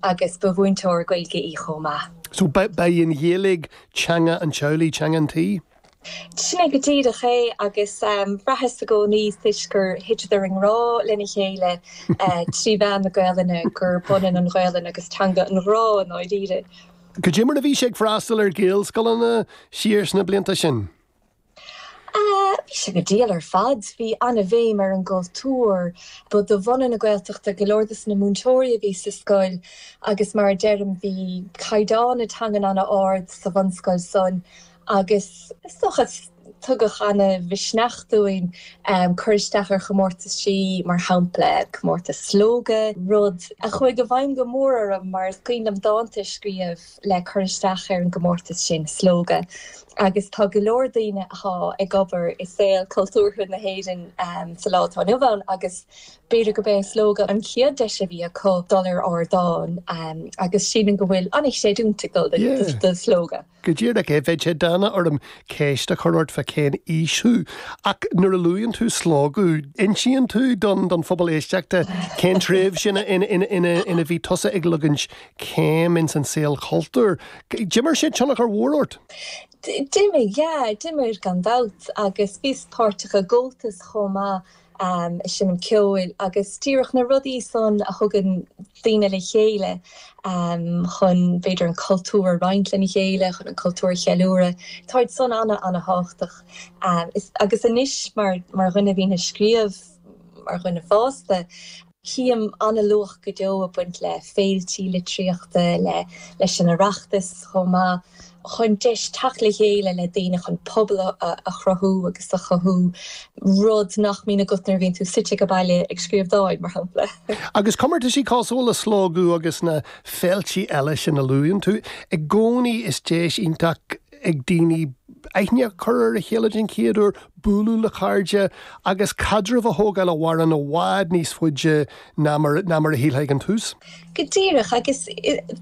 Agus ba mhúinteoir Gaeilge í chomh maith. So, ba í an Ghaeilge teanga an teaghlaigh, teanga an tí? Sin é go díreach é. Agus bhraitheas i gcónaí, toisc gur thiteadar i ngrá lena chéile trí mheán na Gaelainne, gurb ionann an Ghaelainn agus teanga an ghrá i ndáiríre. Goidé mar a bhí sé ag freastal ar Ghaelscoileanna siar sna blianta sin. Bhí sé go diail ar fad. Bhí an-bhéim ar an gcultúr. Ba de bhunadh na Gaeltachta go leor de na múinteoirí a bhí sa scoil agus mar a deirim bhí caighdeán na teangan an-ard sa bhunscoil san agus, is dócha, tugadh an-mhisneach dúinn cur isteach ar chomórtaisí, mar shampla comórtas Slógadh, rud a chuaigh i bhfeidhm go mór orm mar is cuimhin liom dánta a scríobh. le cur isteach ar an gcomórtas sin, Slógadh, agus tá go leor daoine athá ag obair i saol cultúrtha na hÉireann sa lá atá inniu ann agus b'fhéidir gurb é Slógadh an chéad deis a bhí acu dul ar ardán agus sílim go bhfuil an-chreidiúint ag dul do Slógadh. Go díreach é. Bheadh sé dána orm ceist a chur ort fá cén aois thú, ach nuair a luaíonn tú Slógadh, insíonn tú don phobal éisteachta cén tréimhse ina bhí tusa ag leagan céim ins an saol cultúir. D'imir sé tionchar mór ort? D'imir, yeah. D'imir gan dabht agus bhíos páirteach i gComhaltas chomh maith, ehm, ag seinm ceoil agus díreach na rudaí san a thugann daoine le chéile, ehm, chun b'fhéidir an cultúr a roinnt lena chéile, chun an cultúr a cheiliúradh. Táid san ana, ana thábhachtach. Ehm, agus anois mar dhuine a bhíonn a' scríobh, mar dhuine fásta, Chím an-luach go deo ag baint le féiltí litríochta, le leis an Oireachtas chomh maith, chun deis teacht le chéile le daoine chun pobal a chruthú agus a chothú, rud nach mbíonn agat nuair a bhíonn tú suite ag an baile ag scríobh dáin, mar shampla. Agus comórtaisí cosúil le Slógadh agus na féiltí eile sin a luaíonn tú, i gcónaí is deis iontach ag daoine aithne a chur ar a chéile den chéad uair, bualadh le cairde, agus caidreamh a thógáil a mhaireann i bhfad níos faide ná mar a shílfeá ag an tús. Go díreach, agus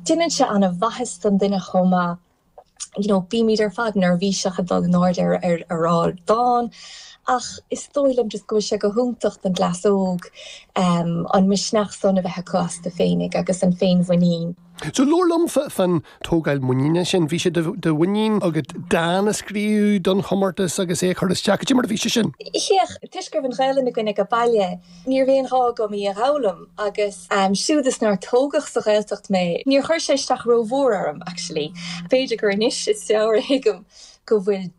déanann sé an-mhaitheas don duine chomh maith. You know, bímid ar fad neirbhíseach ag dul in airde ar ardán, ach is dóigh liom just go bhfuil sé go hiontach don gcleas óg an misneach san a bheith acu astu féinig, agus an féinmhuinín. So labhair liom fan tógáil muiníne sin. Bhí sé de mhuinín agat dán a scríobh don chomórtas agus é a chur isteach. Goidé mar a bhí sé sin? Féach, toisc go raibh an Ghaelainn againn ag a' baile níorbh aon ghá agam í a dh'fhoghlaim agus siúd is nár tógadh sa Ghaeltacht mé níor chuir sé isteach ró-mhór orm, actually. B'fhéidir gur anois is fearr a thuigim go bhfuil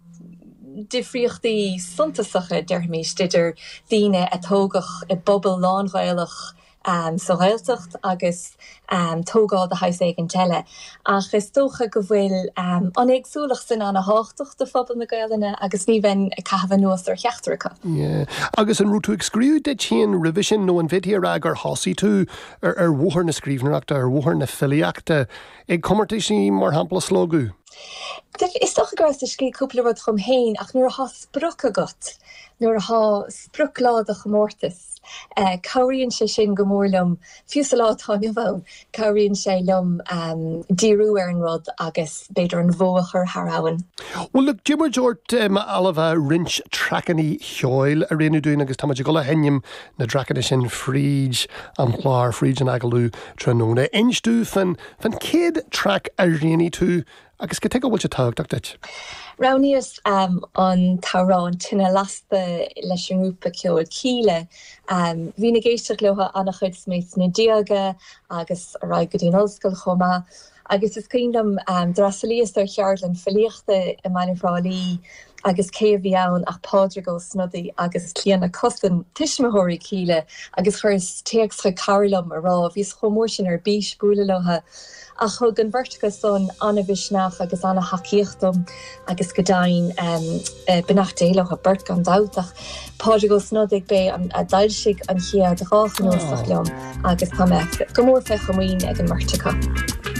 difríochtaí suntasacha, déarfaimís, idir daoine a tógadh i bpobal lán-Ghaelach am sa Ghaeltacht agus am tógáil de shaghas éigin eile. Ach is dócha go bhfuil an éagsúlacht sin an-thábhachtach do phobal na Gaolainne agus ní bheinn ag caitheamh anuas ar cheachtar acu. Yeah. Agus an raibh tú ag scríobh duit féin roimhe sin nó an bhféadfaí a rá gur thosaigh tú ar bhóthar na scríbhneoireachta, ar bhóthar na filíochta ag comórtais mar shampla Slógadh? Bhuel, is dócha go rabhas ag scríobh cúpla rud dhom féin ach nuair atá sprioc agat, nuair atá sprioc lá do chomórtas, Cabhraíonn sé sin go mór liom, fiú sa lá atá inniu ann, cabhraíonn sé liom díriú ar an rud agus b'fhéidir an bhó a chur thar abhainn. Bhuel, look, d'iarr mé ort, a Ailbhe, roinnt traiceanna cheoil a roghnú dúinn agus táimid ag dul a sheinm na dtraiceanna sin fríd an chlár, fríd an agallamh tráthnóna. Inis domh fan chéad traic a roghnaigh tú Agus cad chuige a bhfuil sé tábhachtach duit? Roghnaíos an t-amhrán An Tine Lasta leis an ngrúpa ceoil Kíla. Bhínn ag éisteacht leo an-chuid is mé sna déaga agus ar aghaidh go dtí an ollscoil chomh maith. Agus is cuimhin liom, d'fhreastalaíos ar cheardlann filíochta i mBaile Thrá Lí agus cé a bhí ann ach Pádraig Ó Snodaigh agus Clíona Cussen, tuismitheoirí Kíla, agus chuireas téacs chuig cara liom a rá, bhíos chomh mór sin ar bís bualadh leo. Ach thug an bheirt acu san an-mhisneach agus an-thacaíocht dom agus go deimhin beannacht Dé leo beirt gan dabht, ach Pádraig Ó Snodaigh b'é a d'fhoilsigh an chéad dhá chnuasach liom agus tá mé go mór fé chomaoin ag an mbeirt acu.